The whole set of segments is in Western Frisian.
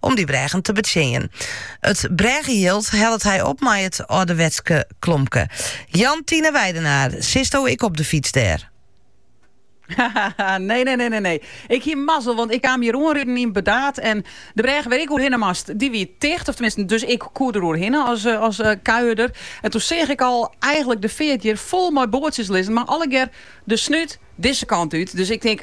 om dy brêgen te betsjinjen. It brêgejild hellet hy op mei it âlderwetske klompke. Jantine Weidenaar, sitsto ek op de fyts dêr? nee, nee, nee, nee, nee. Ik hie mazzel, want ik kaam hier oanriden yn Burdaard. En de brêg wêr't ik oerhinne moast, die wie ticht. Of tenminste, dus ik koe der oerhinne as, eh, as uh, kuierder. En toen seach ik al eigenlik de feart hjir fol mei boatsjes lizzen. Mar allegear de snút dizze kant út. Dus ik tink,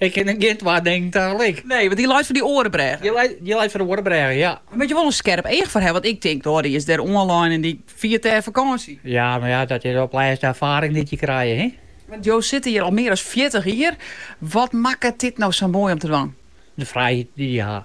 Ik kin gjin twa dingen tagelyk. Nee, want dy leit foar dy oare brêge. Dy leit foar de oare brêge, ja. Dêr moat je wol in skerp each foar hawwe, want ik tink, oh, dy is dêr oanlein en dy fiert dêr fakânsje. Ja, mar ja, dat is op 't lêst de erfaring dy't je krije, hin. Want jo sitte hjir al mear as fjirtich jier. Wat makket dit no sa moai om te dwaan? De frijheid dy't je ha.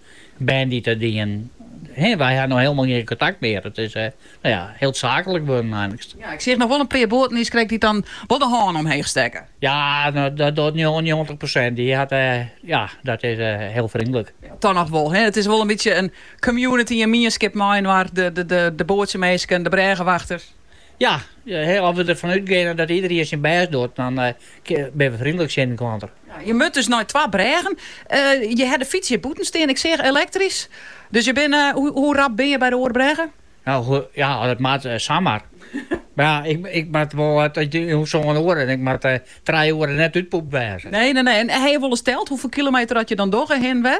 Bern dy't dat dienen, he, wy ha no hielendal gjin kontakt mear. It is no ja, hiel saaklik wurden einliks. Ja, ik seach noch wol in pear boaten niiskrekt dy't dan wol de hân omheech stekke. Ja, dat docht njoggentich persint. Dy hat, ja, dat is hiel frjindlik. Dat noch wol, he. It is wol in bytsje in community, in mienskip mei-inoar, de boatsjeminsken, de brêgewachters. Ja, as we derfan útgeane dat iederien syn bêst docht, dan binne we frindlik tsjin de klanten. Je moatte dus nei twa brêgen. Je hawwe de fyts hjir bûten stean, ik seach elektrysk. Dus je binne, hoe rap binne je by de oare brêge? Nou ja, as it moat, samar. Mar ja, ik moat wol in sân oere en ik moat trije oere net útpûpt wêze. Nee, nee, nee. En hawwe je wol ris teld hoefolle kilometer dat je dan dogge hinne en wer?